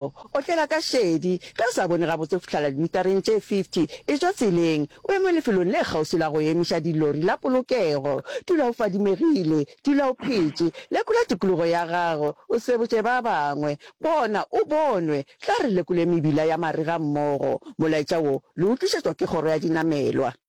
Otlela ka šedi. Ge o sa bone gabotse go fihlela dimitareng tše 50, etšwa tseleng, o eme lefelong le kgauswi la go emiša dilori la polokego. Dula o fadimegile. Dula o phetše. Lekola tikologo ya gago, o sebotše ba bangwe. Bona o bonwe. Tla re lekole mebila ya marega mmogo. Molaetša wo le o tlišetšwa ke Kgoro ya Dinamelwa.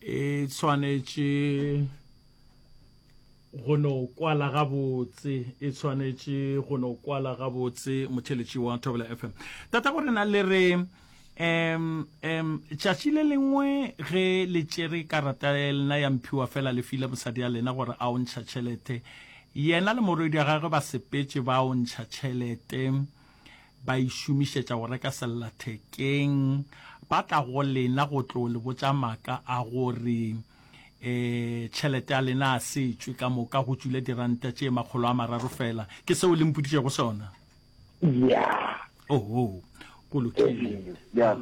e tshwanetše go no kwala gabotse e tshwanetše go no kwala gabotse motheletši wa thobela fm tata go rena le re um um tšatši le lengwe ge le tšere karata lena ya mphiwa fela le file mosadi ya lena gore a o ntšha tšhelete yena le morwedi ya gagwe ba sepetše ba o ntšha tšhelete ba e šomišetša go reka sellathekeng, ba tla go lena go tlo le botša maka a gore e tšhelete ya lena a se tšwe ka moka go tšwile diranta tše makgolo a mararo fela. Ke seo le mpoditšego sona? Yeah. Oho, go lokile. Yeah.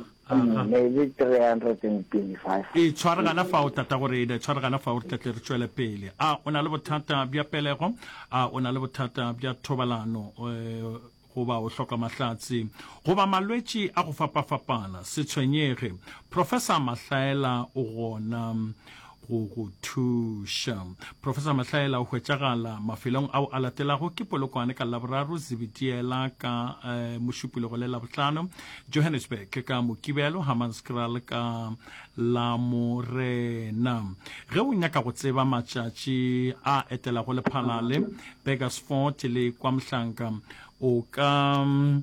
E tshware gana fao, tatago rena, e tshware gana fao re tla tle re tšwele pele. A o na le bothata bja pelego? A o na le bothata bja thobalano? Eh, goba o hloka mahlatse goba malwetši a go fapafapana se tshwenyege professor mahlaela o gona go go thuša professor mahlaela o hwetšagala mafelong ao a latelago ke polokwane ka laboraro zibitiela ka eh, mošupologo le labohlano johannesburg ka mokibelo hammanskraal ka la morena ge o nyaka go tseba matšatši a etelago lephalale burgersfort le kwa mohlanka o ka mm,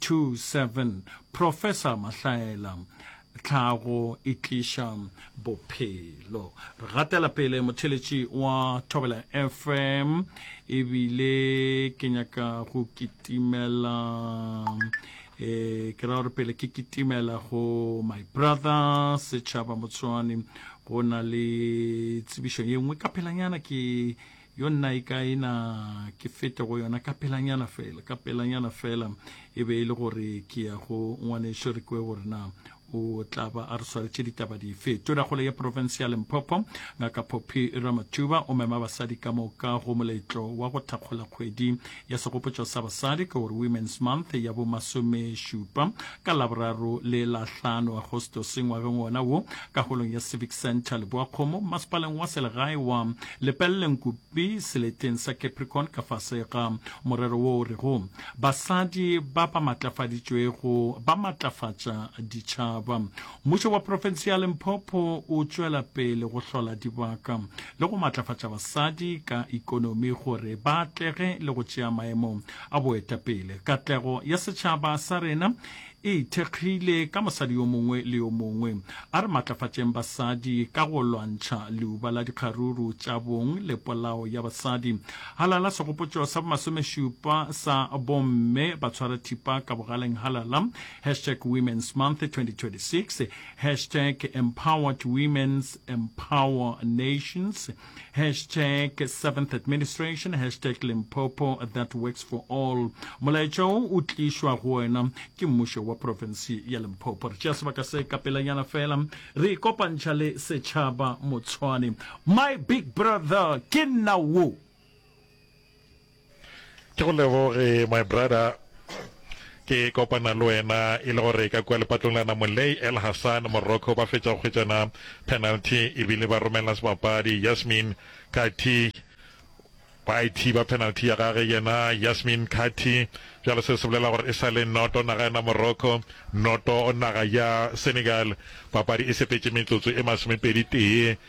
27 Professor Mahlaela, Tlhago e tliša bophelo. Re gatela pele motheletši wa Thobela FM ebile ke nyaka go kitimela e ke ra gore pele ke kitimela go my brother setšhaba motswani go na le tsebišo ye nngwe ka phelanyana ke Yo nna e ka e na ke fete go yona ka pelanyana fela, ka pelanyana fela e be e le gore ke ya go ngwaneso re kwe gore na o tla ba a re swaretše ditaba dife. Tonakgolo ya profense ya Limpopo ngaka Poppy Ramathuba o mema basadi ka moka go moletlo wa go thakgola kgwedi ya segopotšo sa basadi ke gore Women's Month ya bo masomešupa ka Laboraro le la hlano Agostose ngwageng wona wo ka holong ya Civic Centre Leboakgomo masepaleng wa selegae wa Lepelle Nkupi seleteng sa Capricorn ka fase ga morero wo o rego Basadi ba ba matlafaditšwego ba matlafatša ditšhaba. Mmušo wa profense ya Limpopo o tšwela pele go hlola dibaka le go matlafatša basadi ka ikonomi gore ba atlege le go tšea maemo a boetapele. Katlego ya setšhaba sa rena e ithekgile ka mosadi yo mongwe le yo mongwe. A re matlafatšeng basadi ka go lwantšha leuba la dikgaruru tša bong le polao ya basadi. Halala segopotšo sa bomasomešupa sa bomme ba tshwara thipa ka bogaleng halala Hashtag Women's Month 2026, Hashtag Empowered Women's Empower Nations, Hashtag Seventh Administration, Hashtag Limpopo That Works For All. Molaetša o o tlišwa go wena ke mmušo wa profensi ya Limpopo. Re tšea sebaka se ka pelanyana fela, re ikopantšha le setšhaba Motshwane. My big brother ke nna wo. ke go leboge my brother ke kopana le wena e le gore ka kua lepatlong la namolei el hassan morocco ba fetša go kgwetšana penalty ebile ba romela sebapadi yasmin kati ba e thiba penalty ya gage yena yasmin kati bjalo se se bolela gore e sa le noto naga ya morocco noto naga ya senegal papadi e sepetše metsotso e masomepedi tee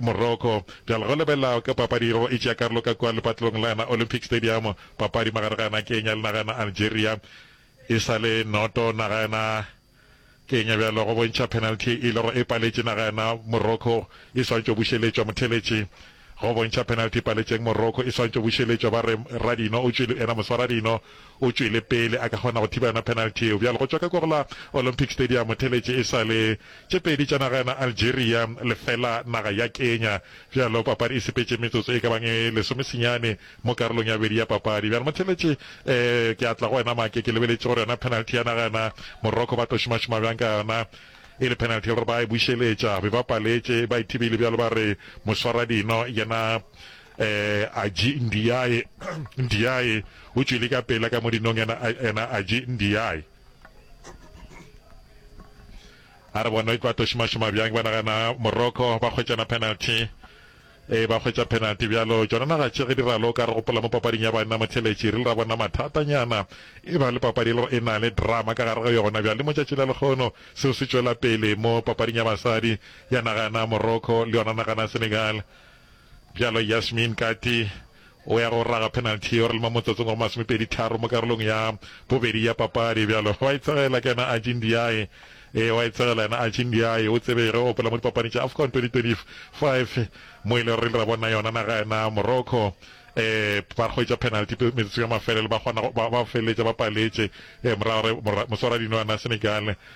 Morocco. Bjale go lebelela ka papadi yeo e tšea karolo ka kua lepatlelong la yona Olympic Stadium. Papadi magare ga yona Kenya le naga ya yona Algeria e sa le noto. Naga ya yona Kenya bjalo go bontšha penalty e lego e paletše naga ya yona Morocco e swantšo bušeletšwa. Motheletši go bontšha penalty e paletšeng Morocco e swantšo bušeletšwa. Ba re Radino o tšwele yena moswa Radino. o tšwele pele a ka kgona go thiba yona penalty yeo. Bjale go tšwa ka Korla Olympic Stadium theletše e sa le tše pedi tša naga yona Algeria lefela naga ya Kenya. Bjalo papadi e sepetše metsotso e ka bang e lesomesenyane mo karolong ya bobedi ya papadi. Bjale motheletše eh ke a tla go wena Make, ke lebeletše gore yona penalty ya naga yona Morocco ba tlo šomašoma bjang ka yona e le penalty e le gore ba e bušeletša be ba paletše ba e thibile bjalo ba re moswaradino yena Eh, Aji Ndiaye, Ndiaye o tšwele ka pela ka modinong ena, ena Aji Ndiaye. A re bona e tlo tošima-šima bjang ba nagana Morocco ba kgwetšana penalty. E ba kgwetša penalty bjalo tšona naga tše ge di ralo ka re gopola mo papading ya banna motheletši re le ra bona mathatanyana e ba le papadi le e na le drama ka gare ga yona bjale mo tšatši la lekgono seo se tšwela pele mo papading ya basadi ya nagana Morocco le yona nagana Senegal Bjalo Yasmin Kati o ya go raga penalty yeo re le mo motsotsong wa go masomepedi tharo mo karolong ya bobedi ya papadi. Bjalo wa e tsegela ke yena Archie Ndiaye. Ee, wa e tsegela yena Archie Ndiaye. O tsebe ge o opela mo dipapading tša Afcon 2025 mo e le gore re ile ra bona yona naga yena Morocco um ba hwetša penalty metsotsong ya mafelelo ba kgona ba ba feleletša ba paletše um morago re moswaradinwana Senegal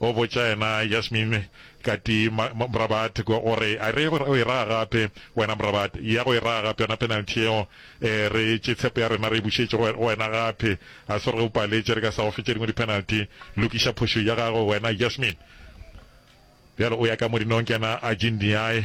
O botša yena Yasmin, Katie, ma, ma, Mrabat, go, go re, A re ye go e raga gape, wena Mrabat? Ya go e raga gape yona penalty yeo. E, re tše tshepo ya rena re e bušetše go, go wena gape. A se gore ge o paletše re ka sa go fe tše dingwe dipenalty. Lokiša phošo ya gago wena Yasmin. Bjale o ya ka Mourinhong ke yena a Jindiae.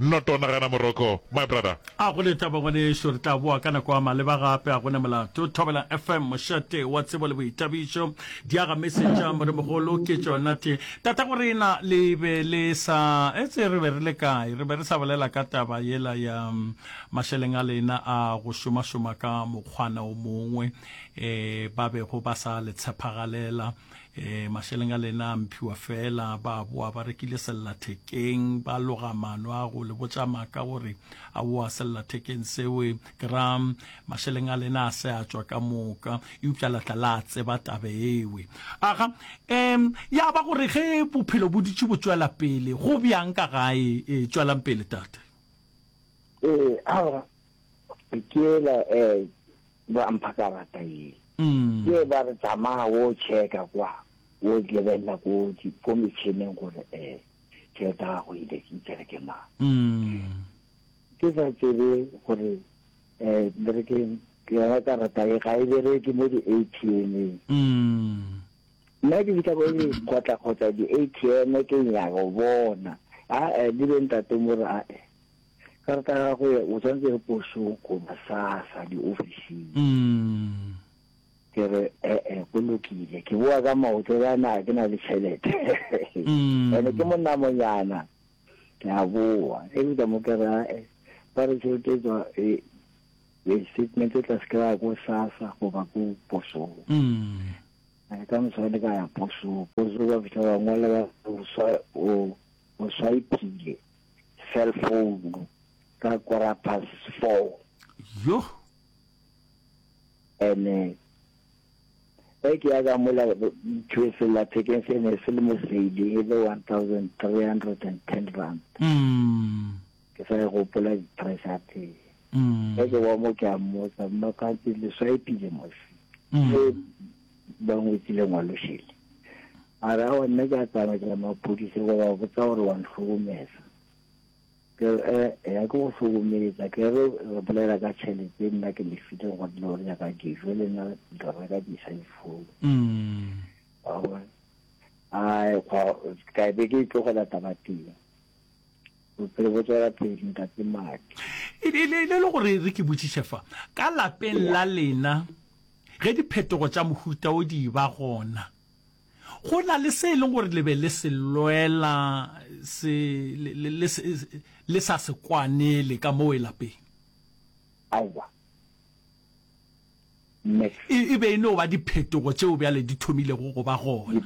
Not o nagana moroko my brother. A go le taba ngwanešu, re tla boa ka nako a maleba gape, a go ne molato. Thobela FM, mošate wa tsebo le boithabišo, diaga mesetša, Moremogolo ke tšona tše. Tatago rena le be le sa etse re be re le kae, re be re sa bolela ka taba yela ya mašeleng a lena a go šomašoma ka mokgwana o mongwe, ee, ba bego ba sa le tshepagalela, E, mašeleng a lena a mphiwa fela, ba boa ba rekile sellathekeng, ba loga mano a go le botša maka gore a boa sellathekeng sewe, ke ra mašeleng a lena a se a tšwa ka moka, eupša la tla la tseba tabe ewe. Aga, um, ya ba gore ge bophelo bo dutše bo tšwela pele, go bjang ka gae? E, tšwelang pele, tate. E, aga, ke ela, um, Ba mpha karata ye. Ke ba re tsamaya wo checka kwa, wo lebelela ko ko metšhineng gore eh tšhelete ya gago e e tsere ke mang. Ke sa tsebe gore um le re keng yona karata e ga e bereke mo di-ATM-eng. Nna ke fitlha ko ke kgotlakgotla di-ATM ke nyaka go bona, aa le be ntate mo re aa. Karata ya gagwe o tsantse re posoko masasa diofising. Mm. Ke re ee go lokile. Ke boa ka maoto yana ke na le tšhelete. Mm. Ene ke monnamonyana. Ke a boa. E bile mo ke ra e ba re tšhelete e tswa e e statement e tla se kry-a ko sasa goba ko posong. Mm. Eh, ka moswane ka ya posong. Posong ba fitlha ba ngwala ba o swa o o swaipile. cell phone ka quarter past four. Yoh! Ene ge ke ya ka mola ntho sellathekeng se ne se le mosedi e le one thousand three hundred and ten rand mm. ke sa e gopola price ya teng mm. ge ke wa mo ke a mmotsa mmakantse le swaepile mosi mm. ba ngwetsi lengwalo šele. A re awa nna ke a tsamaya ke ya maphodisa go ba botsa gore wa nhlokomeza. Ke re eh ya ke go hlokomeza ke re re bolela ka tšhelete nna ke le file go dilo gore nyaka dijo le nna ke reka di sa difounu. Mm. Awa. A kwa ka be ke tlogela taba teng. Bophelo bo tswela pele, Ntate Maki. E le, e le, e le gore re ke botšiše fa, ka lapeng la lena, ge diphetogo tša mohuta wo di e-ba gona, go na le se e leng gore le be le se lwela, se le, le, le se, le sa se kwanele ka moo lapeng? Aowa. Max. E, e be e no ba diphetogo tšeo bjale di thomilego go ba gona.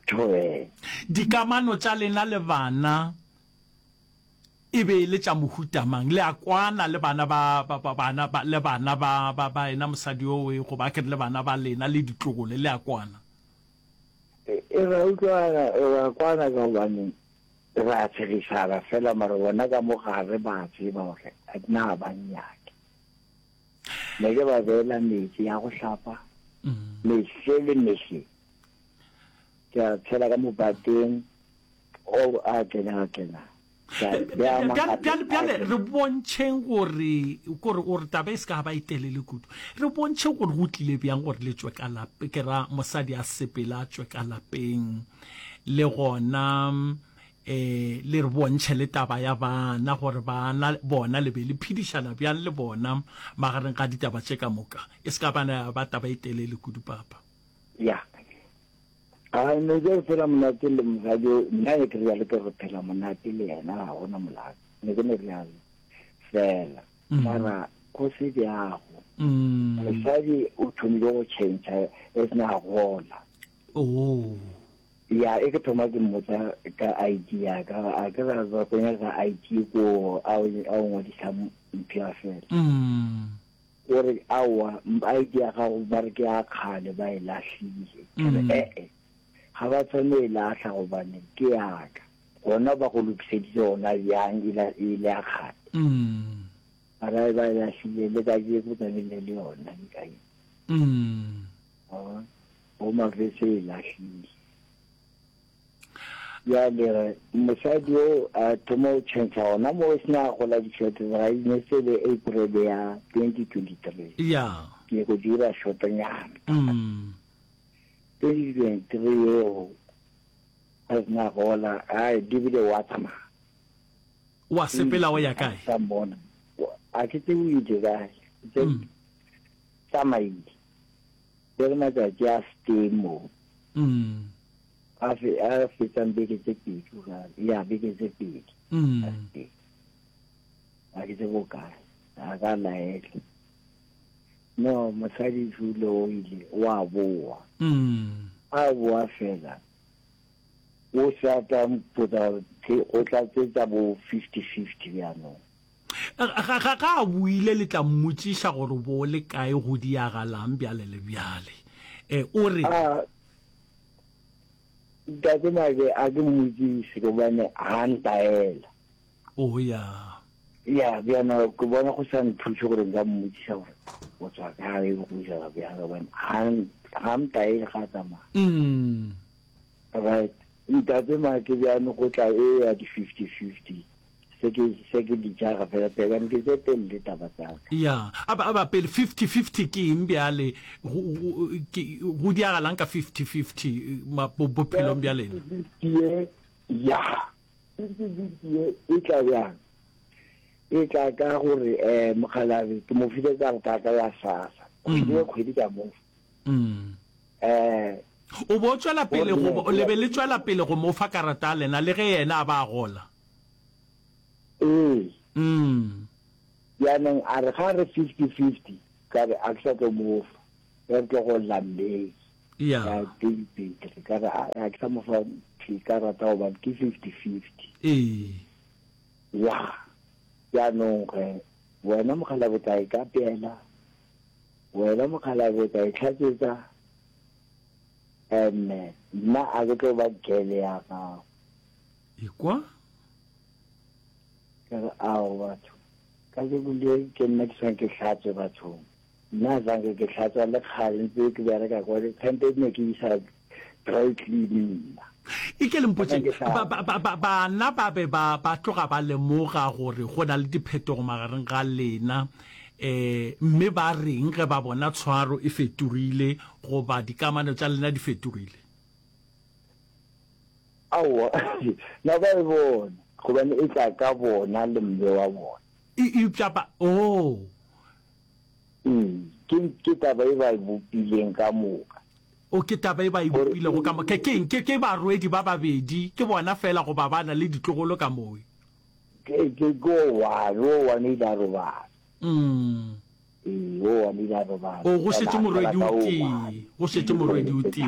Toe. Dikamano tša lena le bana e be e le tša mohuta mang? Le a kwana le bana ba, ba, ba bana ba, le bana ba, ba, ba ena mosadi o e go ba ke le bana ba lena le ditlogole le a kwana? E, e ra utlwana, e ra kwana ka gobane ra tshegisana fela mara bona ka mogare ba tseba gore a dina ba nnyake. ne ke ba beela metsi ya go hlapa mehle le mehle ke a tshela ka mobateng o a tlenaga tlena bjale re bontšheng gore kore o re taba e se ka ba e telele kudu re bontšhe gore go tlile bjang gore le tswe ka lape ke ra mosadi a sepela a tswe ka lapeng le gona E le re bontšhe le taba ya bana, gore bana bona le be le phedišana bjang le bona magareng ga ditaba tše ka moka, e se ka ba ya ba taba e telele kudu, Papa. Ya. A ne ke re phela monate le mosadi o, nna ne ke realo ke re phela monate le yena ga gona molato, ne ke ne realo fela mara go se bjago mosadi o thomile go change as ne a gola. Oh. Ya e ke thoma ke mmotsa ka ID ya ka a ke ra ba go nyaka ID ko a o ngwadisa mphya fela. O re awa ID ya gago ba re ke ya kgale ba e lahlile. Ke re eh eh ga ba tshwane e lahla gobane ke ya ka. Gona ba go lokiseditse gona bjang e le ya kgale. Ba re ba e lahlile le ka je ko tlamehile le yona ke ka eng. go mavese e lahlile. Bjale re mosadi yo a thoma go tšhentšha gona mo o sena gola dishwete ga e ne se le April ya 2023 ya ke go dira shotonyana mm. 2023 yeo ga sena gola a dibile wa tsamaya wa sepela o ya kae sa mbona a ke tse o ile kae tse mm. tsamaile Ke re matšatši a se tee moo. A fetsang beke tse pedi o ka re, ya beke tse pedi a se tee. A ke tse bokae, a ka laele. No, mosadi jule o ile, o a boa. A boa fela, o sa tla mpotsa gore o tla tsetsa bo fifty fifty bjanong. Ga, ga, ga a boile le tla mmotšiša gore bo le kae go diagalang bjale le bjale. E, o re. A, Tate Mage, a ke mmotšiše gobane ga ntaela. O ya. Ya, bjana ke bona go sa nthuše gore nka mmotšiša gore o tswa kae go jala bjang gobane ga, ga ntaele ga tsamaya. Mm. Right. Ntate Mage bjano go tla e ya di-fifty-fifty. Se ke, se ke di tšaga fela, pele, ga nke tše telle taba tsa ka. Ya, a ba, a ba pele, fifty, fifty ke eng bjale? Go, go, ke, go diagalang ka fifty, fifty, ma, bo, bophelong bja lena? Fifty, fifty ye, ya, fifty, fifty ye e tla bjang? E tla ka gore, eh, mokgalabje ke mo file ka leka ka la sasa, kgwedi le kgwedi ka mo fa. Mm. Eh. O bo tšwela pele go, le be le tšwela pele go mo fa karata ya lena, le ge yena a ba a gola? Ee. Mm. Jaanong a re ga re 50 50 ka re a ke sa tlo mo fa. Re tlo go lla May. Yeah. Ka twenty twenty ka re a ke sa mo fa ke ka rata go ba ke 50 50. Ee. Yeah. Jaanong re wena mokgalabe o tla e ka pela. Wena mokgalabe o tla e tlhatsetsa. And nna a ke tlo ba gele ya gago. Ekwa? Ka re, Ao, batho, ka jeko le ke nna ke swange ke hlatswe bathong. Nna zange ke hlatswa le kgale, ntse ke bereka kwa, kgante ne ke isa dry clean nna. E ke le mpotšeng, ba, ba, ba, ba, bana ba be ba, ba tloga ba lemoga gore go na le diphetogo magareng ga lena, um mme ba reng ge ba bona tshwaro e fetogile goba dikamano tša lena di fetogile? Aowa, na ba e bona? Gobane e tla ka bona le Mme wa bona. E, eupša ba, oo. Ee, ke, ke taba e ba e bopileng ka moka. O, ke taba e ba e bopilego ka moka. Ke eng? Ke, ke barwedi ba babedi, ke bona feela goba ba na le ditlogolo ka moo? Ke, ke, ke o one, o one o ile a robala. Mm. Ee, o one o ile a robala. O, go šetše morwedi o tee, go šetše morwedi o tee.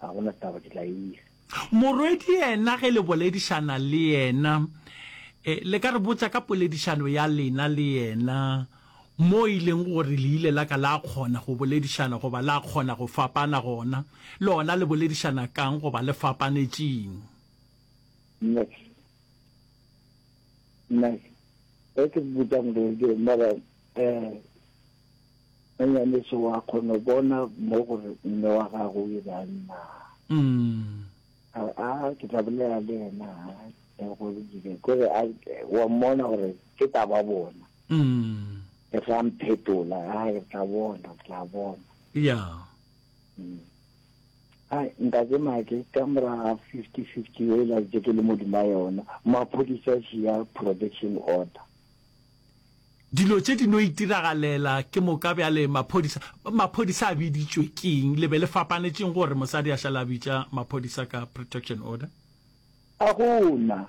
Ga go na taba, ke tla e isa. Morwedi yena ge le boledišana le yena, eh, le ka re botša ka poledišano ya lena le yena, moo e leng gore le ile la ka la kgona go boledišana goba la kgona go fapana gona. Lona le boledišana kang goba le fapanetšeng? Max, Max, ge ke botša Morwedi, mara, eh, Nonyane, se wa kgono bona mo gore mme wa gago o ile a nna? A re, a ke tla bolela le ena le go dile kore a wa mmona gore ke tla ba bona. Ke tla mphetola, a re tla bona, tla bona. Ya. Ai ntate Make ka mora 50-50 e la je ke le modima yona, maphodisa a siya protection order. Dilo tše di no itiragalela ke moka bjale maphodisa maphodisa a biditšwe keng le be le fapanetšeng gore mosadi a šala bitša maphodisa ka protection order a gona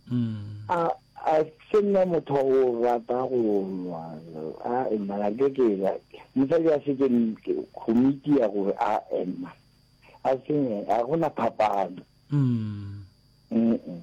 mm. a a se nna motho o rata go nwa a emma ga ke ke la mosadi a se ke komiti ya gore a emma a se a gona phapano mm mm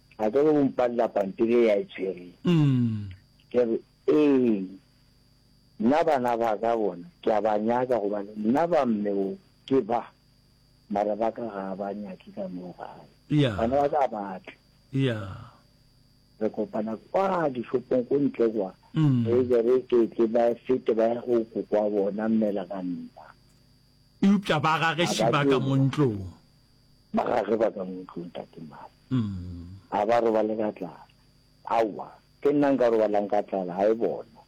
a ka be o mpalela pampiri e ya e tshwere ke re ee nna bana ba ka bona ke a ba nyaka gobane nna ba mme o ke ba mara ba ka ga ba nyake ka moo gae bana ba ka batle re kopana kwa dishopong ko ntle kwa mm. re be re ketle ba fete ba ya go kokwa bona mmela ka nna Eupša ba ga ge šiba ka mo ntlong. Ba ga ge ba ka mo ntlong, Tate Mali. Ga ba robale ka tlala. Aowa, ke nna nka robalang ka tlala, ga e bona.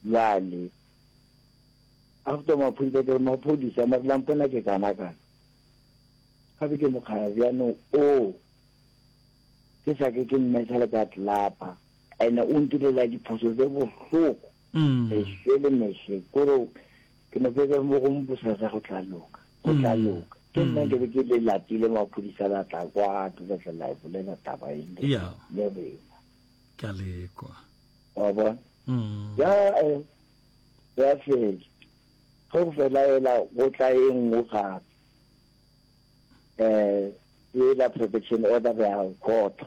Bjale, after maphodisa, ke re, Maphodisa, mare la mpona ke kanakana. Ga be ke mokgaya bjanong o, ke sa ke ke mmetsha le ka tlelapa, and-e o ntirela diphoso tse bohloko. Meswe le meswe kore ke no fetsa mo go mposasa go tla loka go tla loka ke nna ke be ke le lapile maphodisa la tla kwa ke tla tla la bolela taba e le ya le rena ke le kwa wa bona mm. ya eh, ya fela go fela ela go tla e nngwe gape eh ela protection order ya khotho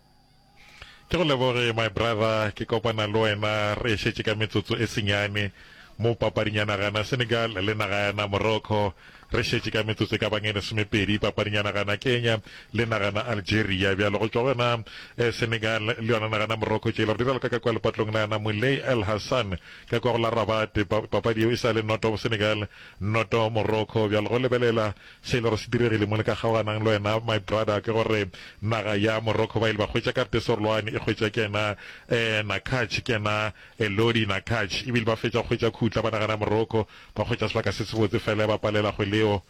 Ke go leboge my brother, ke kopana le wena re ešetše ka metsotso e senyane mo papading ya naga yana Senegal le naga yana Morocco, re šetše ka metsotso e ka bang e lesomepedi papading ya naga yana Kenya le naga yana Algeria, bjalo go tšwa go yona eh, Senegal le yona naga yana Morocco tšela re dira leka ka kwa lepatlong la yana Moulay El Hassan ka kwa go la Rabat, papadi yeo e sa le noto Senegal noto Morocco, bjalo go lebelela Se e lego se diregile mo le ka kgaoganang le wena my brother ke gore naga ya Morocco ba ile ba hwetša karte e sorolwane e hwetša ke yena eh Nakhache ke yena Elodie Nakhache ebile ba fetša go hwetša khutla ba naga ya Morocco ba hwetša sebaka se sebotse fela ya ba palela go leo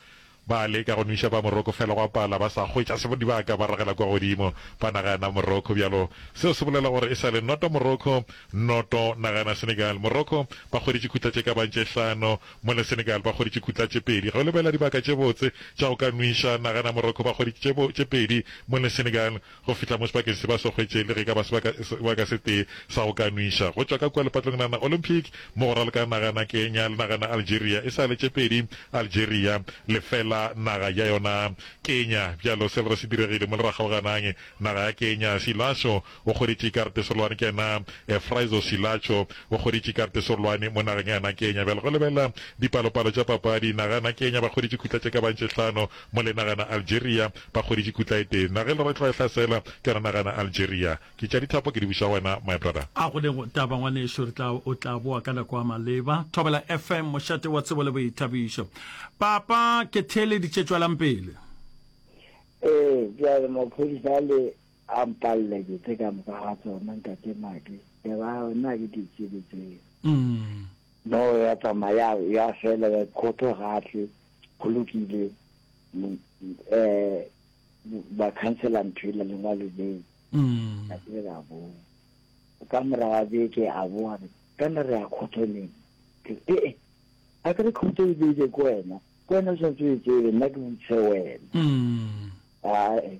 ba leka go nwiša ba Morocco fela gwa pala ba sa hwetša se dibaka ba ragela kwa godimo ba naga ya Morocco bjalo seo se bolela gore e sa le noto Morocco noto naga ya Senegal Morocco ba hweditše khutla tše ka bang tše hlano Mola Senegal ba hweditše khutla tše pedi. Ge o lebelela dibaka tše botse tša go ka nwiša, nagana Morocco ba hweditše tše tše pedi mola Senegal go fihla mo sebakeng se ba se hwetše le ge e ka ba sebaka sebaka se tee sa go ka nwiša go tšwa ka kua lepatlong la na Olympic mo go raloka nagana Kenya le nagana Algeria e sa le tše pedi Algeria lefela naga ya yona Kenya. Bjalo se lego se diregile mo le ra kgaoganang naga ya Kenya Silasho o kgoretše ikarete serolwane ke na Efraizo Silacho o kgoretše ikarete serolwane mo nageng ya na Kenya. Bjale go lebelela dipalopalo tša papadi, naga ya na Kenya ba kgoretše khutla tše ka bago tše hlano mo le naga ya na Algeria ba kgoretše khutla e tee. Naga e le gore e tloga e hlasela ke yona naga ya na Algeria. Ke tša dithapo ke di buša go wena my brother. A go lego taba ngwanešu re tla o tla boa ka nako a maleba. Thobela FM mošate wa tsebo le boithabišo. Papa ke theeleditše tšwelang pele. Ee bjale maphodisa a le. A mpalle ke tse ka moka ga tsona, Ntate Madi. Lebala, nna ga ke di tsebe tseo. No, ya tsamaya, ya fela, ya khotho ga tle, go lokile, um, ba khansela ntho ela, lengwalo leo. Ka ke ka boa. Ka mora ga beke, a boa, ka na re ya khotho leng? Ke, e, e, a ke re khotho e beile ko wena, ko wena o santse o e tsebe, nna ke botse wena. A, e.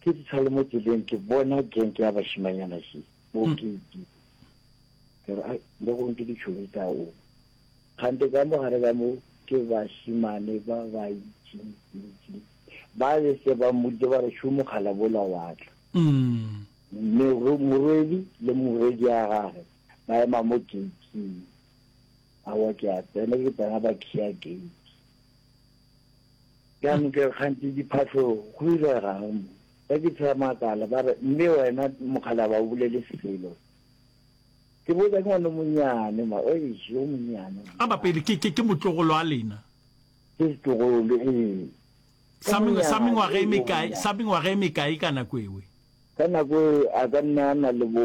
Ke fihla le mo tseleng ke bona genke ya bašimanyana se bo hmm. ke ke ke re le go ntse ditšhobe tsa o gante ka mo gare ka mo ke bašimane ba ba itse itse ba le se ba mmoditse ba re šomo kgala bola watla hmm. morwedi le morwedi ya gage ba ema mo gating awa ke a tsena ke tsena ba kea gate Ka ntle kganthe diphahlong go irega'ng mo? Ba ke tshwaya makala, ba re, Mme wena mokgalaba o bolele selo. Ke botša ke ngwana o monnyane ma, eish, yo monnyane mo. Ba bapedi ke, ke, ke motlogolo a lena. Ke setlogolo, ee. Sa, sa mengwaga e mekae, sa mengwaga e mekae ka nako ewe? Ka nako ewe a ka nna a na le bo.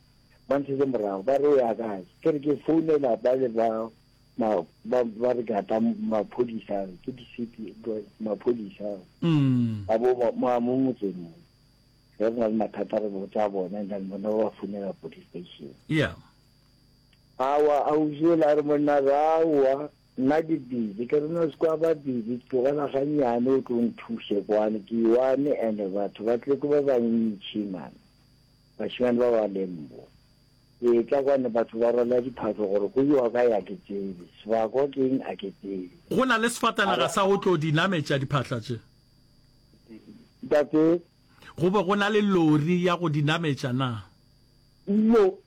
ba nthetse morago ba re o ya kae ke re ke founela ba le ba ma ba ba re ka tla maphodisa ke di city maphodisa ba bo ma mo motseng mo re na le mathata re botsa bona nda bona ba founela police station yeah awa a uzela re monna rawa nna ke busy ke rena se kwa ba busy tlogela ganyane o tlo nthuse kwane ke one and batho ba tle ke ba bantšhi man Bašemane ba ba leng mo, etla kwano batho ba rwala diphatlo gore go iwa kae a ke tsebe, sebakwa ke eng a ke tsebe. Go na le sefatanaga sa go tlo di nametša diphatla tše? Ntate? Go be go na le lori ya go di nametša na? Iyo,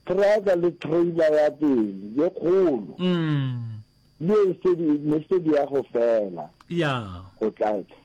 traka le trailer ya pele ye kgolo, le ye e se di, ne se di ya go fela, ya. go tla,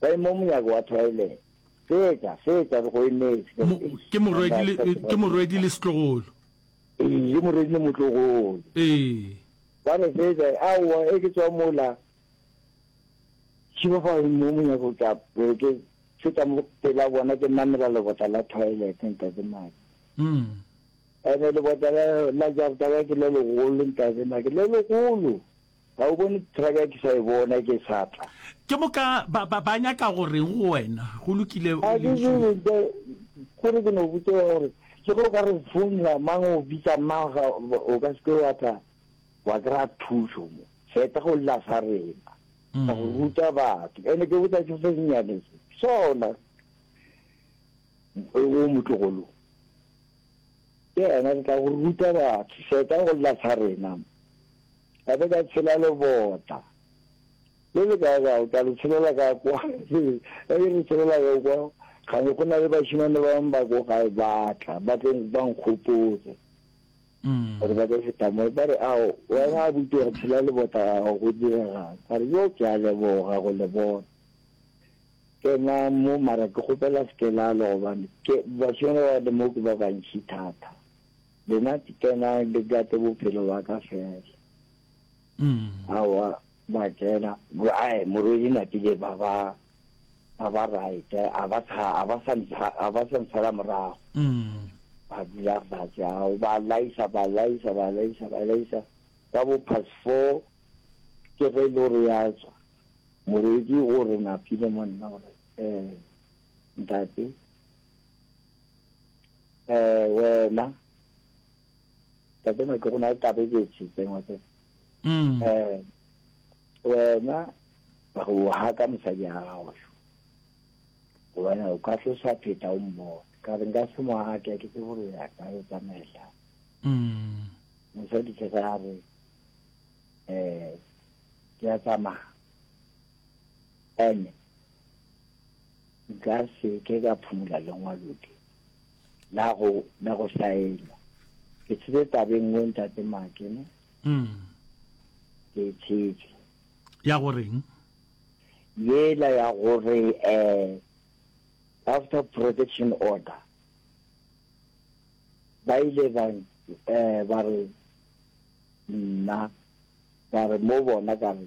Ba e mo monyako wa toilet. Fetša, fetša, re go emetše. Mo, ke morwedi le, ke morwedi le setlogolo. Ee, ke morwedi le motlogolo. Ee. Ba re fetša, aowa, e ke tswa mola. Šiba ba e mo monyako ka, be ke feta mo pela bona, ke namela lebota la toilet, ntate Maki. Mm. Ene lebota la, la jarata ya ke le legolo, ntate Maki, le legolo. Ga o bone traka ke sa e bona ke sa tla? Ke moka ba, ba, ba nyaka go reng go wena? Go lokile, o lentšu. Kore ke no botse wa gore le go ka re founela mang o bitsa mang ga o ka seke wa tla wa kry-a thušo mo feta go lla sa rena ka go ruta batho ene ke botsa se se senyane sona o motlogolong ke ena re tla go ruta batho feta go lla sa rena mo Ka be ka tshela lobota. Le le kae gae, ka le tshelela ka kwa. Ka ke le tshelela ka kwa, ga ne go na le bašemane ba bangwe ba ko gae ba tla, ba tlo ba nkgopotse. Gore ba ka feta mo, ba re, ao, wena abuti wa tshela lebota gago go direga. Ka re, yo, ke a leboga go le bona. Kena mo, mara ke kgopela se ke la lo gobane, ke bašemane ba le mo ke ba bantši thata. Lena tsena le gate bophelo ba ka fela. Awa ba tsena ai morwedi na ke ba ba ba ba right a ba tsha a ba sa ntsha a ba sa ntshala morago. Ba dula ba tsha ba laisa ba laisa ba laisa ba laisa ka bo past 4 ke re lo re ya tswa. Morwedi o re na phile monna gore eh ntate eh wena ka tsena ke gona ka be ke tshi tsengwa se mm eh wena ba go ha ka mosadi a gago wena o ka tlosa pheta o mmo ka re nka se mo ha ke ke tsebo re ya ka e tsamela mm mosadi ke ga re eh ke ya tsamaya ene Nka se ke ka phumola lengwaloke la go la go saena. Ke tshetse tabe nngwe ntate Makene. Mm. Ke tshetse. Ya goreng? Yela ya gore eh after protection order ba ile ba eh ba re nna ba re mo bona ka re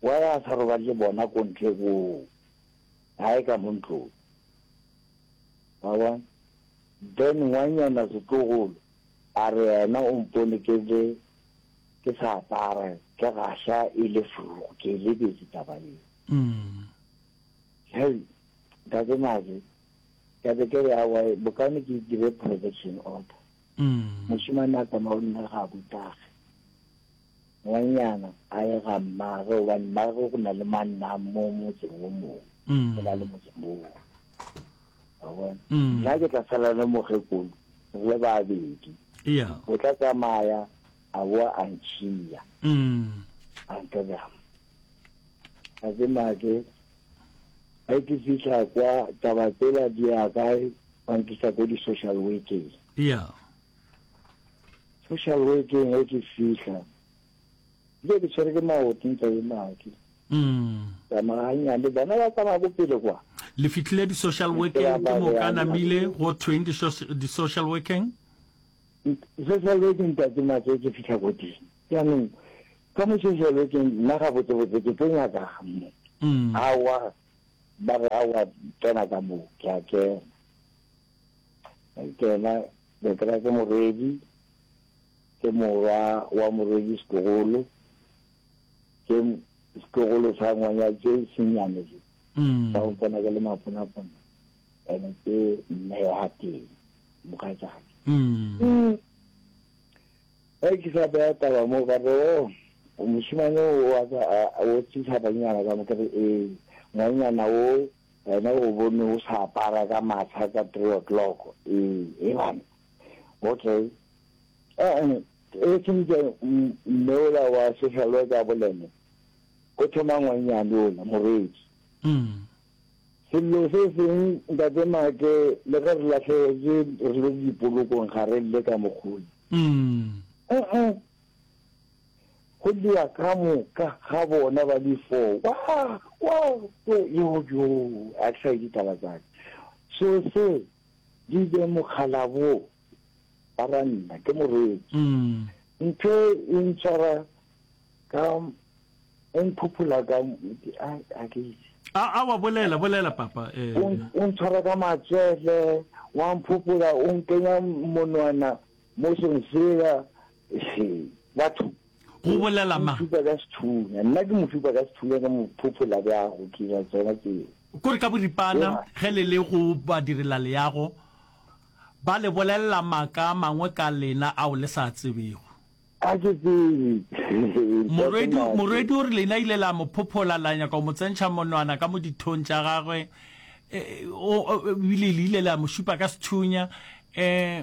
Why a sa robale le bona ko ntle koo? Hae ka mo ntlong. Wa bona? Then ngwanyana setlogolo a re yena o mpone ke le ke sa apara ke gasha e le furu ke e lebetse taba eo. Hei, Ntate Naze, ka be ke re aowa bokaone ke dire protection order. Moshemane a tsamaye o nna ga a butage. Ngwanyana a ye ga mmagwe gobane mmagwe go na le manna mo motseng o mongwe go na le motseng o mongwe wa bona nna ke tla sala le mokgekolo re le babedi o tla tsamaya a boa a ntšhiya a ntlogama a ke make a ke fitlha kwa taba tsela di ya kae ba nkisa ko di-social workeng Social workeng ge ke fihla, dilo ke tshwere ke maoto ntsa e make. Tsamaya nyane bona ba tsamaya ko pele kwa. Le fitlhile di social workeng ke mo ka namile go thweng di di social workeng? Social workeng ta ke matse ke fitlha go di. Ya no ka mo social workeng nna ga botse botse ke tlo nyaka ga mo. Awa ba re awa tsena ka mo ke a kena. Ke yena Betra ke morwedi, ke morwa wa morwedi Setlogolo, ke setlogolo sa ngwanya tse senyane se. Sa go tsena ke le maponapona. Ene ke mme wa teng, mogatšake. Ge ke sa beya taba moo ka re, o mošemane o a ka o tshisa banyana ka mo ke re ee. Ngwanyana o Wena o bone o sa apara ka matsha ka three o'clock. Ee, e bane. Okay. Eh, e sentse mme ola wa social worker a bolele. Go thoma ngwanyane ola, morwedi. Mm. Sello se seng ntate Make le ge re latlhegetswe re le dipolokong ga re lle ka mogolo. Mm. Uh-uh. Go lla ka moka ga bona ba le four. Wa, wa, yo, yo, yo, a ke sa ye ditaba tsa ka. So se, di be mokgalabo, ba ra nna, ke morwetsi. Mm. Ntho e ntshwara ka, e mphuphula ka, a, a ke itse. A, a wa bolela, bolela papa. Eh. O, o ntshwara ka matswele, wa mphuphula, o nkenya monwana Mo song sela se, batho. Go bolela mang? Mofipa ka sethunya. Nna ke mofipa ka sethunya ka mophopho la bjago, ke ira tsona tseo. Ko re ka boripana ge le le go badirelaleago, ba le bolelela maaka a mangwe ka lena ao le sa a tsebego. Ga ke tsebe. Morwedi, morwedi o re lena ile la mo phophola, la nyaka go mo tsentšha monwana ka mo dithong tša gagwe, e, o, o, ebile le ile la mo šipa ka sethunya, e.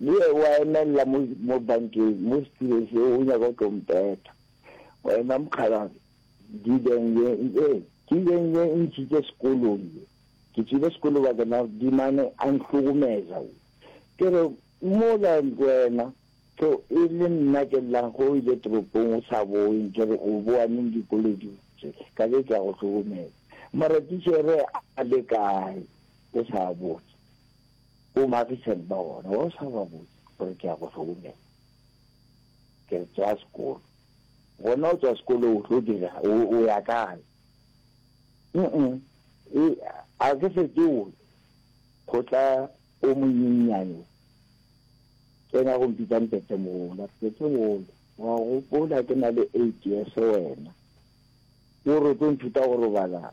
Le ye o a emelela mo, mo bankeng, mo setileng se, o nyaka go tlo mpeta. Wena mokgalabje, dibeng ye, ee, ke beng ye e ntšhitše sekolong ye. Ke tšwile sekolo ba kena dimane a nhlogomeza. Ke re, Mola wena, tlo e le nna ke llang ge o ile toropong o sa boe, nke re o boa neng dikoloding tše, ka be ke a go hlokomela. Mara tichere a le kae? O sa botse. Bo Marison ba gona, wa o sa ba botse gore ke ya go founela, ke re tswa sekolo. Gona o tswa sekolo o tlo dira, o ya kae? Mm-mm, e, a ke se ke o go tla o monyenyane tsena go mpitsa mpetse mola, ke ke bole, wa gopola ke na le eight years wena, o re o tlo nthuta go robala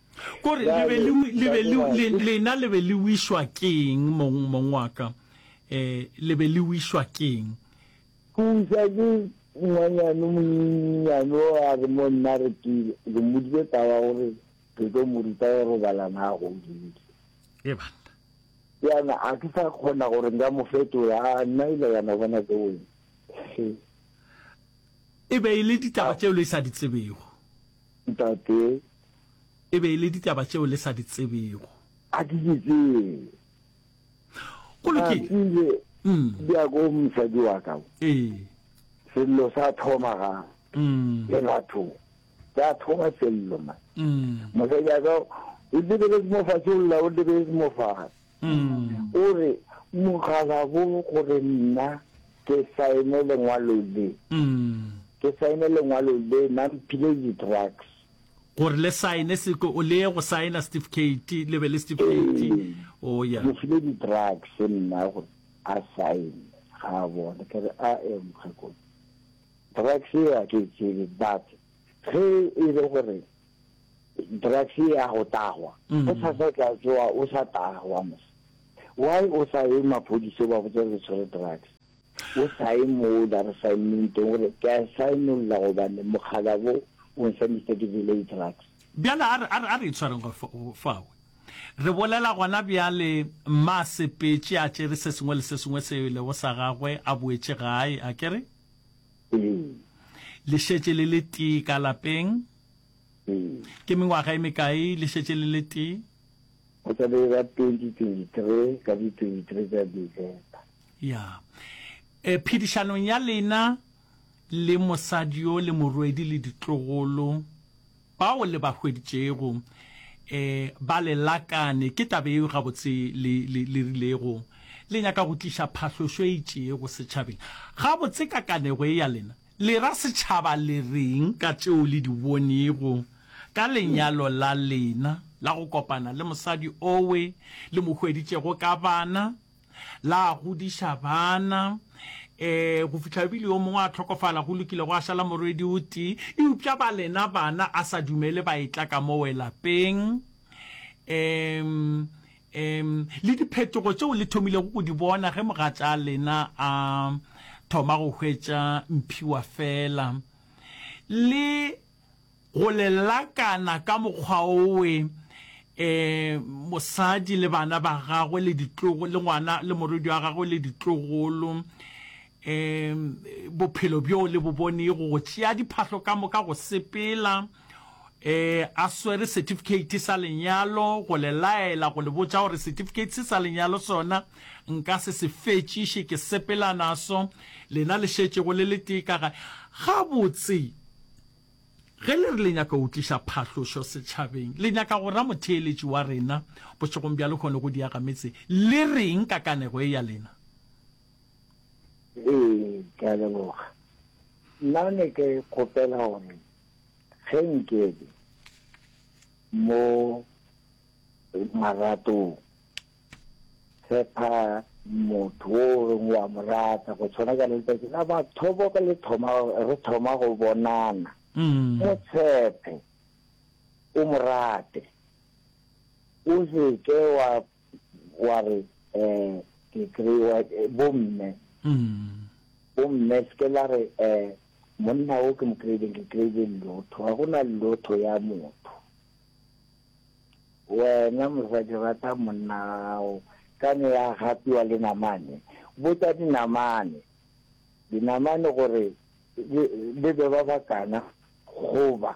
Kore le be le, le be le, le, lena le be le wišwa ke'ng, mong, mong wa ka? Eh, le be le wišwa ke'ng? Thuša ke ngwanyana o monyenyane o a re mo nna re ke, re mmoditše taba gore re tlo mo ruta go robalana a godile. Ee banna. Yana a ke sa kgona gore nka mo fetola, a nna ela yana bona ke wena. He. E be e le ditaba tšeo le sa di tsebego. Ntate. E be e le ditaba tšeo le sa di tsebego. A ke di tsebe. Go lokile. Ke ile di ya ko mosadi wa ka. Ee. Sello sa thoma ga le batho sa thoma sello ma. Mosadi wa ka o lebeletse mo fatshe o lla o lebeletse mo fatshe. O re mokgalabo gore nna ke saene lengwalo le. Ke saene lengwalo le nna mphile di-drugs. Gore le saene seko o leye go saena setifikeiti le be le setifikeiti o ya. Mo file di drugs nna gore a saene ga a bone ke re a e mokgekolo drugs e a ke e tsebe but ge e le gore drugs e a go tagwa o sa sa tla tsoa o sa tagwa mos why o sa ye maphodisa ba botsa re tshwere drugs O sa ye mola resaementeng o re, Ke a saenolla gobane mokgalabo o nswamišitše ke jele di-drugs. Bjale a re, a re, a re itshwareng go, go fawe. Re bolela gona bjale, mma a sepetše, a tšere se sengwe le se sengwe seo e lego sa gagwe, a boetše gae. A ke re? Ee. Le šetše le le tee ka lapeng? Ee. Ke mengwaga e mekae le šetše le le tee? Go tla be e ba 2023 ka di 23 tša December. Ya. E, phedišanong ya lena le mosadi yo le morwedi le ditlogolo bao le ba hweditšego, e, ba le lakane, ke taba yeo gabotse le, le, le rilego le nyaka go tliša phahlošo e itšego setšhabeng. Gabotse kakanego ye ya lena Le ra setšhaba le reng ka tšeo le di bonego ka lenyalo la lena la go kopana le mosadi owe le mo hweditšego ka bana, la godiša bana e go fihla e bile yo mongwe a hlokofala? Go lokile, gwa šala morwedi o tee, eupša ba lena bana a sa dumele ba etla ka mo we lapeng. E, Ee, le diphetogo tšeo le thomilego go di bona ge mogatša lena a thoma go hwetša Mphiwa feela. Le go le lakana ka mokgwa owe, ee, mosadi le bana ba gagwe le ditlogo, le ngwana le morwedi wa gagwe le ditlogolo, ee, bophelo bjoo le bo bonego, go tšea diphahlo ka moka go sepela. e a swere certificate sa lenyalo go le laela go le botša gore certificate se sa lenyalo sona nka se se fetšiše ke sepela naso lena le šetšego le le tee ka ga gabotse ge le re le nyaka go tliša phahlošo setšhabeng le nyaka go ra motheeletši wa rena bošegong bja lekgone go diaga metse le reng ka kanego e ya lena ee ke a leboga nna ne ke kgopela gore Ge nkebe mo maratong, tshepa motho o reng wa mo rata go tshwana ka letsatsi la bathobo ka le thoma re thoma go bonana mm. mo tshepe o mo rate o se ke wa wa re eh ke kry-wa bomme bomme se ke la re eh monna o ke mo kry-ileng ke kry-ile llotho ga go na llotho ya motho wena mosadi rata monna gago ka ne ya gapiwa le namane botsa dinamane dinamane gore le be ba bakana goba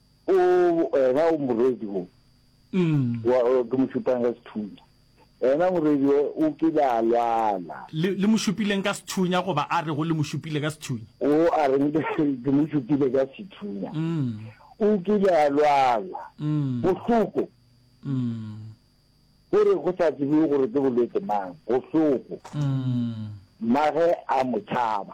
O ena o morwedi o. Wa ke mo šupang ka sethunya. Ena morwedi o o kile a lwala. Le, le mo šupileng ka sethunya goba a rego le mo šupile ka sethunya? O a reng ke mo šupile ka sethunya. O kile a lwala. Bohloko. Go re go sa tsebiwe gore ke bolwetse mang. Bohloko. Mmage a mo tšhaba.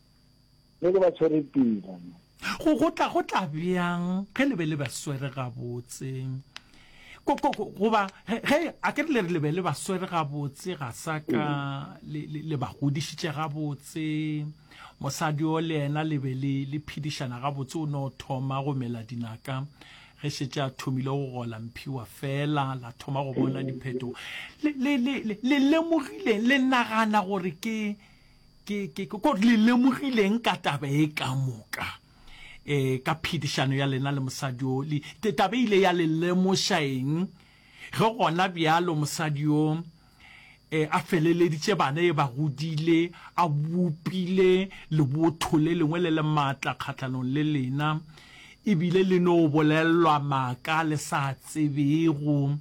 Ge le ba tshwere pila. Go, go tla, go tla bjang ge le be le ba swere gabotse? Ko, ko, ko, goba, ge, ge, a ke re le re le be le ba swere gabotse, ga sa ka le, le, le ba godišitše gabotse, mosadi yo le yena le be le, le phedišana gabotse, o no thoma go mela dinaka ge šetše a thomile go gola mphiwa fela, la thoma go bona diphetogo. Le, le, le, le, le lemogileng, le nagana gore ke, ke ke ko le lemogileng ka taba e ka moka eh ka phedišano ya lena le mosadi o le tetabe ile ya le lemoša eng ge gona bjalo mosadi yo eh a feleleditše bana e ba godile a bopile lebotho le lengwe le le maatla kgatlhanong le lena E bile le no bolellwa maaka le sa tsebego,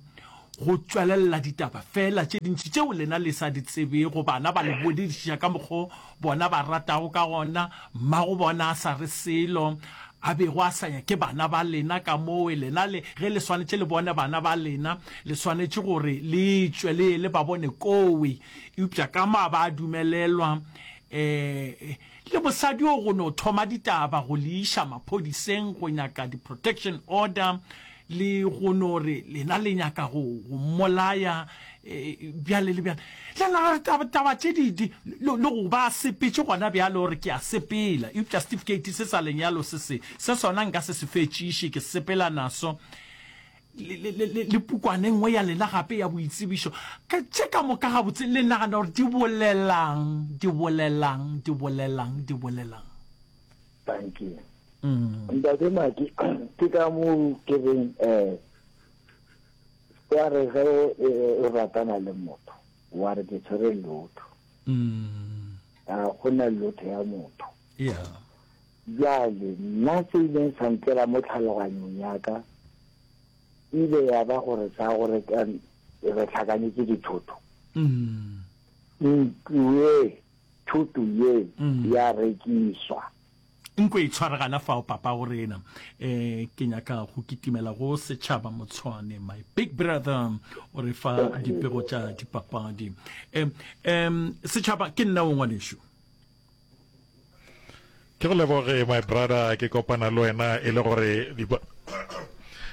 go tšwelella ditaba feela tše dintši tšeo lena le sa di tsebego. Bana ba le boledišiša ka mokgo bona ba ratago ka gona. Mmago bona a sa re selo, a bego a sa nyake bana ba lena. Kamoo lena le, ge le swanetše le bone bana ba lena, le swanetše gore le tšwe le ye le ba bone kowe. Eupša ka ma ba dumelelwa, ee, Le mosadi o go no thoma ditaba go le iša maphodiseng go nyaka di protection order le go no re lena le nyaka go go mmolaya bjale le bjale le no re taba taba tše di di le le go ba sepetše gona bjale o re ke a sepela eupša certificate se sa lenyalo se se se sona nka se se fetšiše ke sepela naso le, le, le, le, le pukwane nngwe ya lena gape ya boitsebišo ka tše ka moka gabotse le nagana gore di bolelang di bolelang di bolelang di bolelang thank you mm. ntate maki ke ka moo ke reng um wa re ge o ratana le motho wa re ke tshwere lotho mm. a go na lotho ya motho Yeah. Bjale, nna se ileng sa ntsela mo tlhaloganyong ya ka, e ile ya ba gore sa gore ka re hlakanyetse dithoto. Ntlo ye, thoto ye, ya rekiswa. Nko e tshware gana fao, papa go rena. Eh, ke nyaka go kitimela go setšhaba Motshwane. My big brother o re fa dipego tša dipapadi. Em, em, setšhaba ke nna o ngwanešu. ke go leboge my brother ke kopana le wena e le gore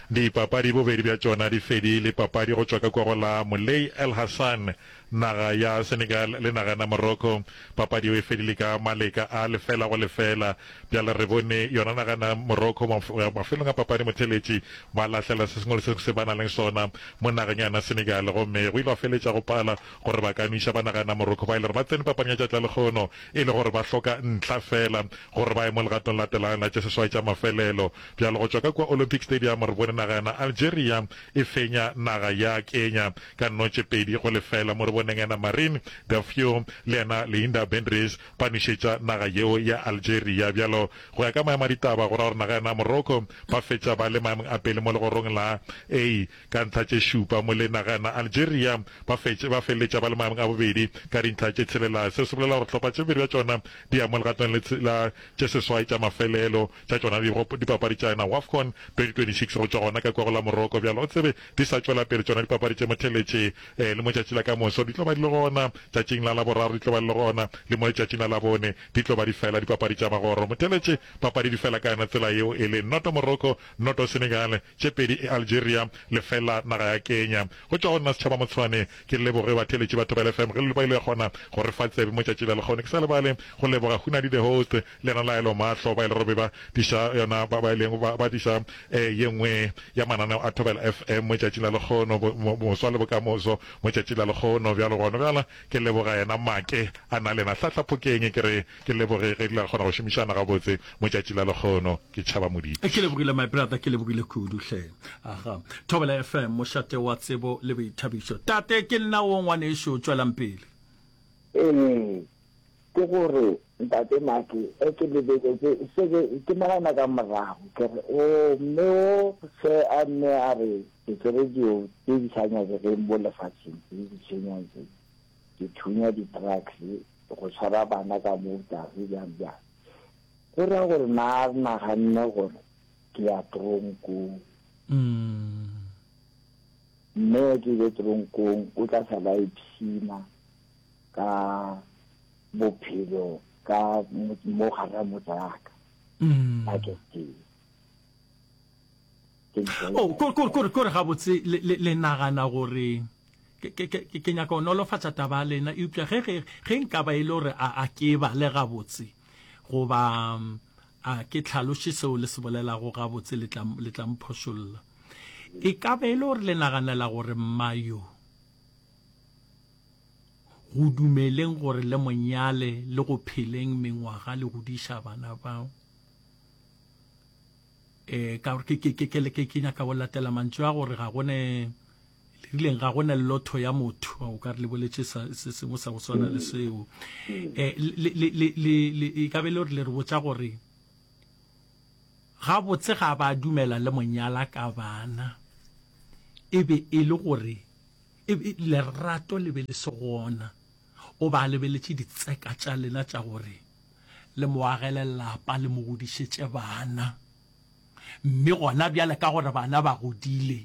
dipapadi bobedi bja tšona di fedile papadi go tšwa ka kwa go la molei el hassan naga ya senegal le naga na morocco papadi yeo e fedile ka maleka a lefela go lefela bjale re bone yona naga na morocco mafelong a papadi motheletši ba lahlela se sengwe le se se ba na leng sona mo nageng yana senegal gomme go ile wa feletša go pala gore ba ka nwiša banaga ya Namoroko ba ile gore ba tsene papang ya tšatla lehono e le gore ba hloka ntlha fela gore ba ye mo legatong la telayo la tše seswai tša mafelelo. Bjalo go tšwa ka kua Olympic Stadium re bone naga ya na Algeria e fenya naga ya Kenya ka nno tše pedi go lefela mo re boneng ya na Marin Dafio le ya na Leinda Bendries ba nwišetša naga yeo ya Algeria. Bjalo go ya ka maemo a ditaba go ra gore naga ya na Morocco ba fetša ba le maemong a pele mo legorong la A. Ka ntlha tše šupa, Molenaga na Algeria ba fetše ba feleletša ba le maemong a bobedi ka dintlha tše tshelela. Seo se bolela gore hlopha tše pedi tša tšona di ya mo legatong le tshela tše seswai tša mafelelo tša tšona di go dipapadi tša yona Wafcon 2026 go tšwa gona ka kua go la Morocco. Bjalo o tsebe di sa tšwela pele tšona dipapadi tše motheletše e le mo tšatši la ka moso di tlo ba di le gona tšatšing la laboraro di tlo ba di le gona le mo letšatšing la labone di tlo ba di fela dipapadi tša magoro motheletše papadi di fela ka yona tsela yeo e le noto Morocco noto Senegal tše pedi e Algeria lefela naga ya Kenya. Go tšwa go nna Setšhaba Motshwane, ke leboge batheeletši ba Thobela FM ge le ba ile gona go re fa tsebe mo tšatši la lekgono. Ke sa lebale go leboga Hunadi the host le yena Laelo Mahlo ba ile go be ba diša yona ba ba ileng ba ba diša eh ye nngwe ya mananeo a Thobela FM mo tšatšing la lekgono bo moswa le bokamoso mo tšatšing la lekgono. Bjalo gona bjala ke leboga yena Make a na le yena Hlahla Phokeng ke re Ke leboge ge di la kgona go šomišana gabotse mo tšatši la lekgono. Ke tšhaba moditi. Ke lebogile my brother, ke lebogile kudu hle. Aha. Thobela FM, mošate wa tsebo le boithabišo. Tate, ke nna wo ngwanešu, tšwelang pele. Ee, ke go re, Ntate Maki, ge ke lebeletse se ke, ke nagana ka morago, ke re, Oo, mme wo, se a nne a re, ditsebe di yo, tše di sa nyakegeng mo lefaseng, le ditšhenyong tše. di thunya di trucks go tshwara bana ka mo tlase bjang bjang go ra gore na re naganne gore ke ya tronkong mm. mme ke ile tronkong o tla sa ba ipshina ka bophelo ka mo gare motsaka mm. baketeng Oh, kore gabotse le nagana gore ke nyaka go nolofatša taba ya lena eupša ge nka ba e le gore a ke e bale gabotse goba a ke tlhaloše seo le se bolelago gabotse le tla mphošolla e ka ba e le gore le naganela gore mmayo go dumeleng gore le monyale le go pheleng mengwaga le godiša bana bao e ka gore ke ke ke ke ke nyaka go latela mantswe a gore ga gone le rileng ga gone lotho ya motho o ka re le boletse se sengwe sa go swana le seo eh le le le le e ka be le gore le re botsa gore ga botse ga ba dumela le monyala ka bana e be e le gore e lerato le be le se gona O be a lebeletše ditseka tša lena tša gore le mo agele lapa le mo godišetše bana. Mme gona bjale ka gore bana ba godile,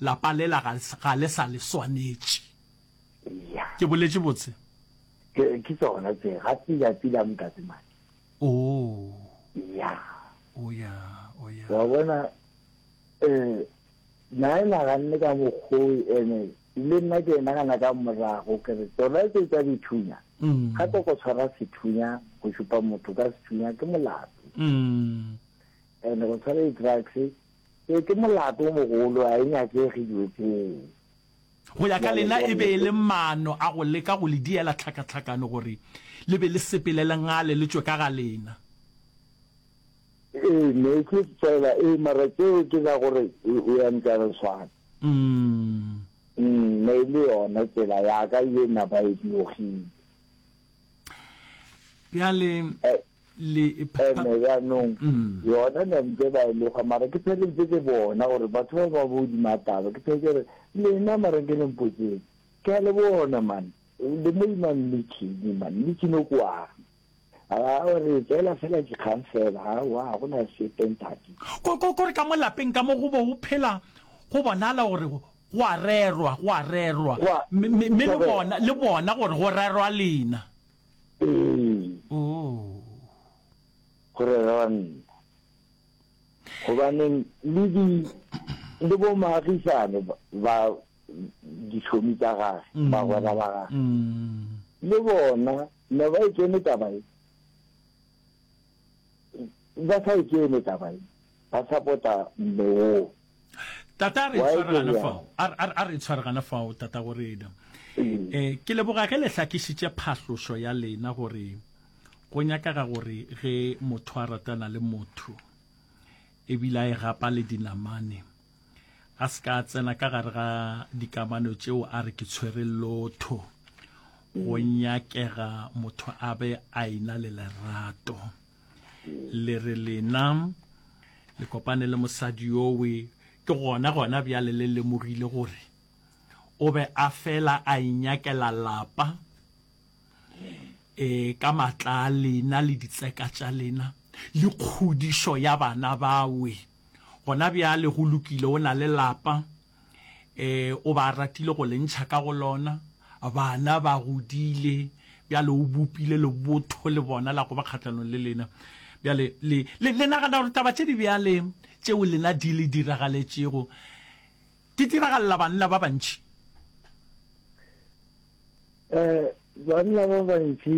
lapa lela ga, ga le sa le swanetše. Eya. Ke boletše botse? Ke, ke tsona tse. Ga pila pila, Mntate Maki. Oo. Eya. O ya, o ya. Wa bona, eh, na e naganne ka mokgwa oo ene Le nna ke nagana ka morago ke re tsona tse tsa dithunya ga ko go tshwara sethunya go šupa motho ka sethunya ke molato and go tshwara di-drugs e ke molato o mogolo a e nyakege dilo tseo go ya ka lena e be e le maano a go leka go le diela tlhakatlhakano gore le be le sepele le ngale le tswe ka ga lena Ee, meetse fela, ee, mara tšeo ke tsa gore o ya ntano swana. Mm. Mm, ne le yona tsela ya ka ye napa e diogile. Bjale eh, le ene jaanong mm. yona ne ntse ba e loga mara ke pheletse ke bona gore batho ba ba bodima taba ke phele ke re lena mara ke le mpotseng ke a le bona mane le mo imang le chini mane le chino kwa Ga o re tseela fela dikgang fela, aowa, ga go na sepe, ntate. Ko, ko, ko re ka mo lapeng ka mo go bo go phela, go bonala gore go a rerwa, go a rerwa. Go a, Mme, mme, mme le go rerwa. bona, le bona gore go rerwa lena. Ee, Oo. go rerwa nna. Gobaneng le di, le bo moagisane ba, ba ditlhomi tsa gage, bagwera ba gage, Mm. le bona No ba e kene taba ye. Ba sa e kene taba ye. Ba sapota mme woo. Tata a re itshware gana fao. A re itshware gana fao tata go rena. E, ke leboga ge le hlakišitše phahlošo ya lena gore go nyakaga gore ge motho a ratana le motho ebile a e gapa le dinamane a se ka tsena ka gare ga dikamano tšeo a re ke tshwere lotho go mm. nyakega motho a be a ina le lerato le re lena le kopane le mosadi yowe ke gona gona bjale le lemogile gore o be a fela a inyakela lapa e ka matla a lena le ditseka tša lena le kgodišo ya bana bawe Gona bjale go lokile, o na le lapa, e, o ba ratile go le ntšha ka go lona, bana ba godile, bjale o bopile lebotho le bona la go ba kgahlanong le lena. Bjale le, le, le nagana gore taba tše di bjale tšeo lena di le diragaletšego di diragalela banna ba bantši? E, banna ba bantši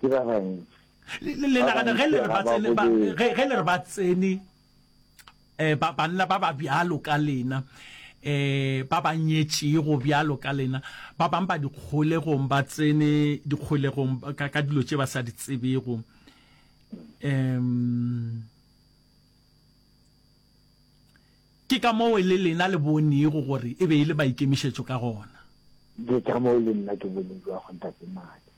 ke ba bantši le nagana ge le re ba tsene ge le re ba tsene eh ba banna ba ba bjalo ka lena eh ba ba nyetšego bjalo ka lena ba bang ba dikgolegong ba tsene dikgolegong ka ka dilo tše ba sa di tsebego um ke ka moo le lena le bonego gore e be e le maikemišetšo ka gona ke ka moo le nna ke boneng jwa go ntate madi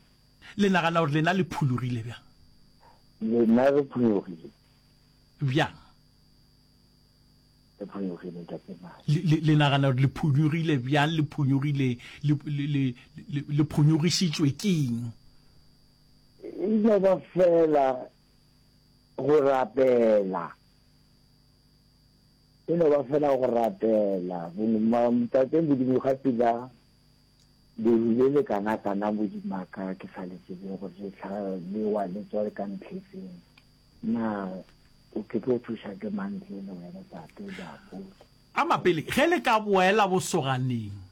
Le nagana gore lena le phulogile bjang? Lena re phulogile. Bjang? Re phulogile, Ntate Mane. Le, le, le nagana gore le phulogile bjang? Le phulogile, le, le, le, le, le phunyogišitšwe ke eng? E no ba feela go rapela. E no ba feela go rapela. Ntate Modimo ga pila. Le hwile le kanakana bo di maka ke sa le tsebe gore le tla lewa le tswa ka ntlhefeng. Na o ke tlo thuša ke mang ntle le wena tate Diapole? Ka mapele ge le ka boela bosoganeng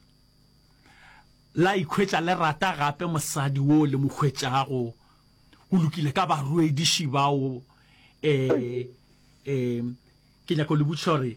la ikhwetša le rata gape mosadi wo le mo hwetšago, go lokile ka baroediši bao. E, e, ke nyaka go le botšiša gore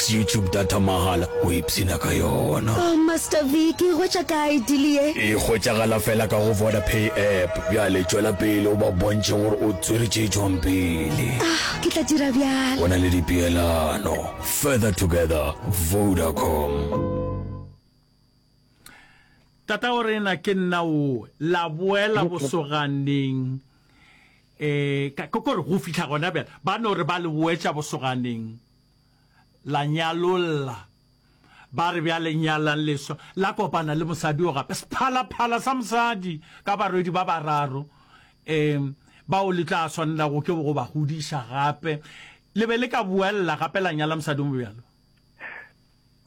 YouTube data mahala o ipshina ka yona. Oh Master V ke e hwetša kae deal ye? E hwetšagala fela ka go Vodapay app. Bjale tšwela pele o ba bontšhe gore o tswere tše tšwang pele. Ah, ke tla dira bjalo. Go na le dipeelano. Further together, Vodacom. Tata o re na ke nna o la boela bosoganeng eh ka kore go fihla gona bjale ba no re ba le boetša bosoganeng la nyalolla. Ba re bjale nyalang leswa, la kopana le mosadi o gape, sephalaphala sa mosadi, ka barwedi ba bararo, um bao le tla swanela go ke go ba godiša gape. Le be le ka boella gape la nyala mosadi o mo bjalo?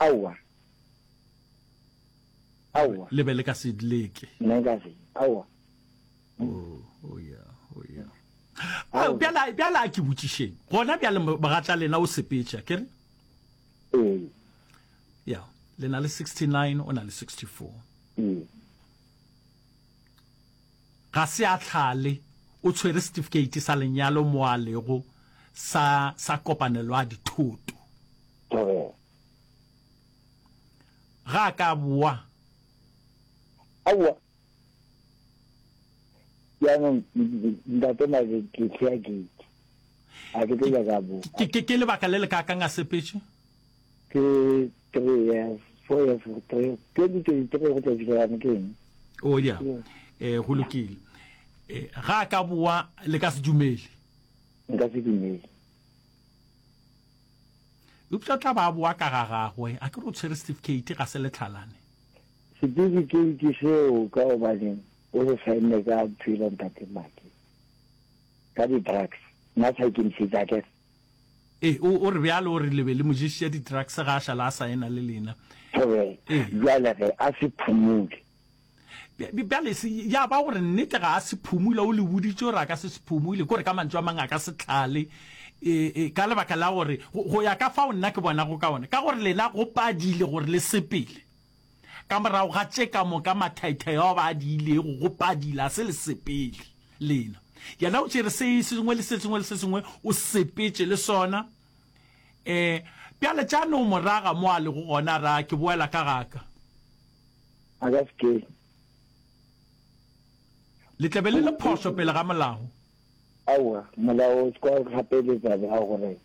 Aowa. Aowa. Le be le ka se leke. Nna nka se, aowa. oh, oh yeah, oh yeah. Oh, bjala bjala ke botšišeng gona bjale mogatla lena o sepetša ke re ee. ya le na le 69 o na le 64 ee. ga se a tlhale o tshwere certificate sa lenyalo mo a lego sa sa kopanelo a dithoto ga ka boa aowa jaanong ntate mare ke tlhea gate a ke tlo nyaka bo ke lebaka le le ka kang a sepetše ke three years four years three twenty twenty three go tla fitlhelane ke eng o ya um go lokile um ga a ka boa le ka se dumele nka se dumele eupša tla ba a boa ka ga gagwe a ke re o tshwere certificate ga se letlhalane Setifikeiti seo ka gobaneng o se saenne ka Twilo Ntate Mmaki? Ka di drugs nna sa ikemišetše a kere. Ee o o re bjalo o re le be le mo ješiša di drugs ga a šala a saena le lena. Thobela, Ee. Bjale ge a se phumule? Bj bjale se ya ba gore nnete ga a se phumule o le boditše gore a ka se se phumule kore ka mantšu a mang a ka se tlale e e ka lebaka la gore go go ya ka fao nna ke bonago ka gona ka gore lena go padile gore le sepele Ka morago ga tše ka moka mathaithai ao ba a diilego go padila, se le sepele lena. Yena o tšere se sengwe le se sengwe le se sengwe, o sepetše le sona. Um bjale tša no mo raga mo a lego gona, a ra, Ke boela ka ga ka. A ka se ke. Le tla be le le phošo pele ga molao. Aowa, molao o se ka go gapeletsa bjang gore.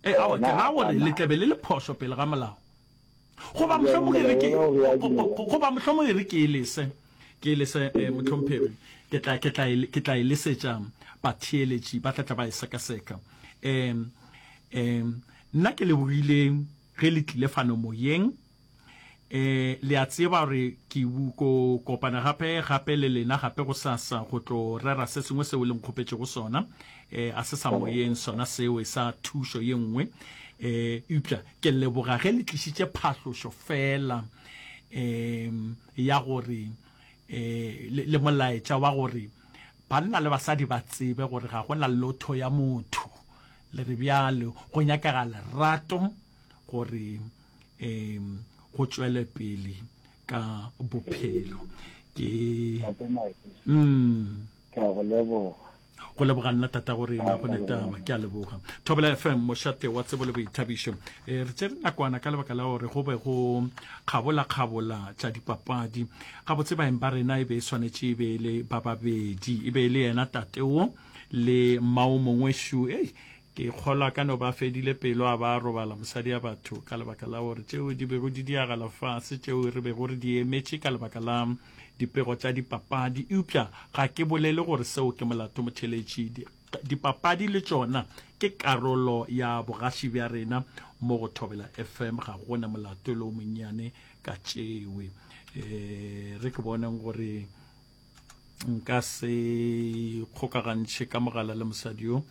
E, aowa, ke ra gore le tla be le le phošo pele ga molao. Goba mohlomong e re ke, goba mohlomong e re ke e lese, ke e lese, eh, mohlomphegi, ke tla, ke tla, ke tla e lesetša batheeletši, ba tla tla ba e sekaseka. Eh, eh, nna ke lebogile ge le tlile fano moyeng. Eh, le a tseba gore ke ko kopana gape, gape le lena gape go sasa, go tlo rera se sengwe seo le nkgopetšego sona. Eh, a se sa moyeng sona seo, e sa thušo ye nngwe. Eh, eupša Ke leboga ge le tlišitše phahlošo fela um ya gore um le molaetša wa gore banna le basadi ba tsebe gore ga go na lotho ya motho le re bjalo go nyakega lerato gore um go tšwele pele ka bophelo ke um. Ke a go leboga. go leboga nna tatago rena go netaba ke a leboga thobela fm mošate wa tsebo le boithabišo e re tsere nakwana ka lebaka la gore go be go kgabola-kgabola tša dipapadi gabotse baeng ba rena e be e swanetše e be e le ba babedi e be e le yena tateo le mmao mongwe shu ei ke kgolwa ka no ba fedile pelo a ba robala mosadi ya batho ka lebaka la gore tšeo di bego di diagala fase tšeo re bego re di emetše ka lebaka la Dipego tša dipapadi, eupša ga ke bolele gore seo ke molato motheeletši. Dipapadi le tšona ke karolo ya bogaši bja rena mo go Thobela FM. Ga go na molato le o monnyane ka tšewe. E re ke boneng gore nka se kgokagantšhe ka mogala le mosadi yo.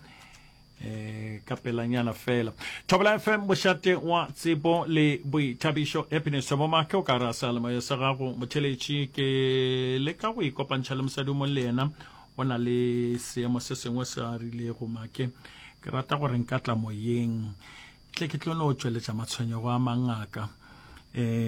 eh ka pelanyana fela thobela fm bošate wa tsebo le boithabišo happiness bomake o ka ra salemo ya sa gago motheletši ke le ka go ikopantšha le mosadi mong le yena o na le seemo se sengwe se a rilego make ke rata gore nka tla moyeng tle ke tlo no tšweletša matshwenyego a mangaka eh